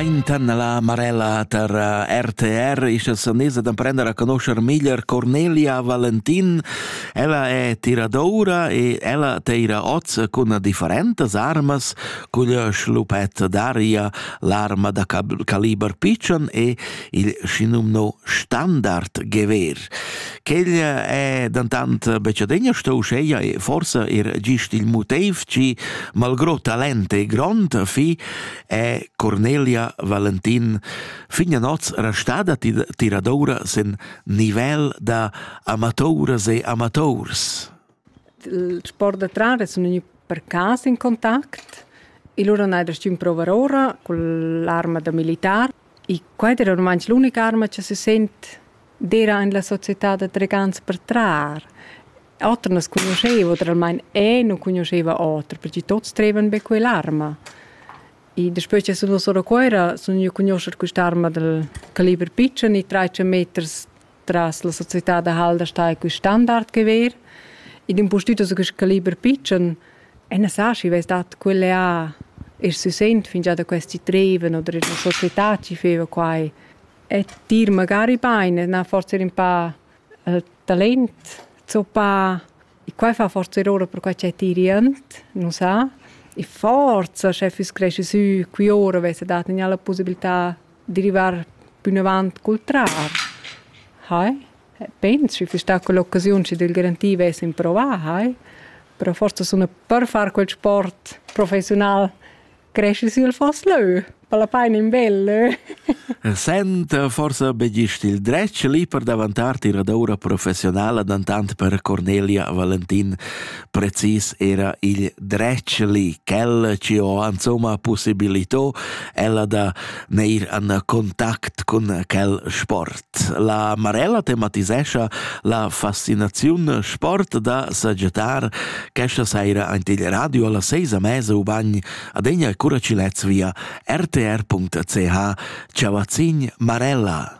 Aintan la Marella tar eh, RTR ischa sanesa d'emprender a conoscer meglier Cornelia Valentin. Ella è tiradoura e ella teira oz cun differentas armas cugl schlupet d'aria, l'arma da caliber pitschen e il schinumno standard gever. Quella è dentant becadegna sto uscheia e forsa er gist il motiv che malgro talent e grond fi è Cornelia Valentin fin a noz restada tiradoura sen nivel da amatouras e amators. Il sport da trar es gnü per cas in contact e lura n'hai da stün prouvar oura cun l'arma da militar. I quai d'eira ormai l'unica arma cha se sent d'eira in la società da tregants per trar. Oter nu as cugnuscheva oter almain eu nu cugnuscheva oter perche tuots trevan be quell'arma. E daspö cha sun duos ora a Cuoira sun gnü a cugnuoscher quist'arma dal caliber pitschen e trais meters tras la società da Halder sta quel standard che ver. Ed un postüto su quest caliber pitschen, e ne sa schi, vess dat quelle a e si sent fin già da questi treven oder la società ci feva quai. E dir magari beine, na forse un pa uh, talent, zo pa Quai fa forza ora perquai ch'è tirient, nu sa. E forza sche füss cresci sü qui ora vessa dat gnà la pussibiltà da rivar pünavant cul trar. Hai? Pens schi füss sta quell'occasiun schi d'el garantì vess improvà, hai? Però forsa suna per far quel sport professiunal Cresci sül fos lö, palapain in bel lö. Senta forsa be gist il dretg lì per davantar tira d'oura professionala, dantant per Cornelia Valentin precis era il dretg lì, quel ci ho insomma possibilitò ella da neir an contact cun quel sport. La Marella tematisescha la fascinaziun sport da sagettar questa saira aint il radio alla seisa mesa ubagn adegna cura ci lez via rtr.ch chavazzin Marella.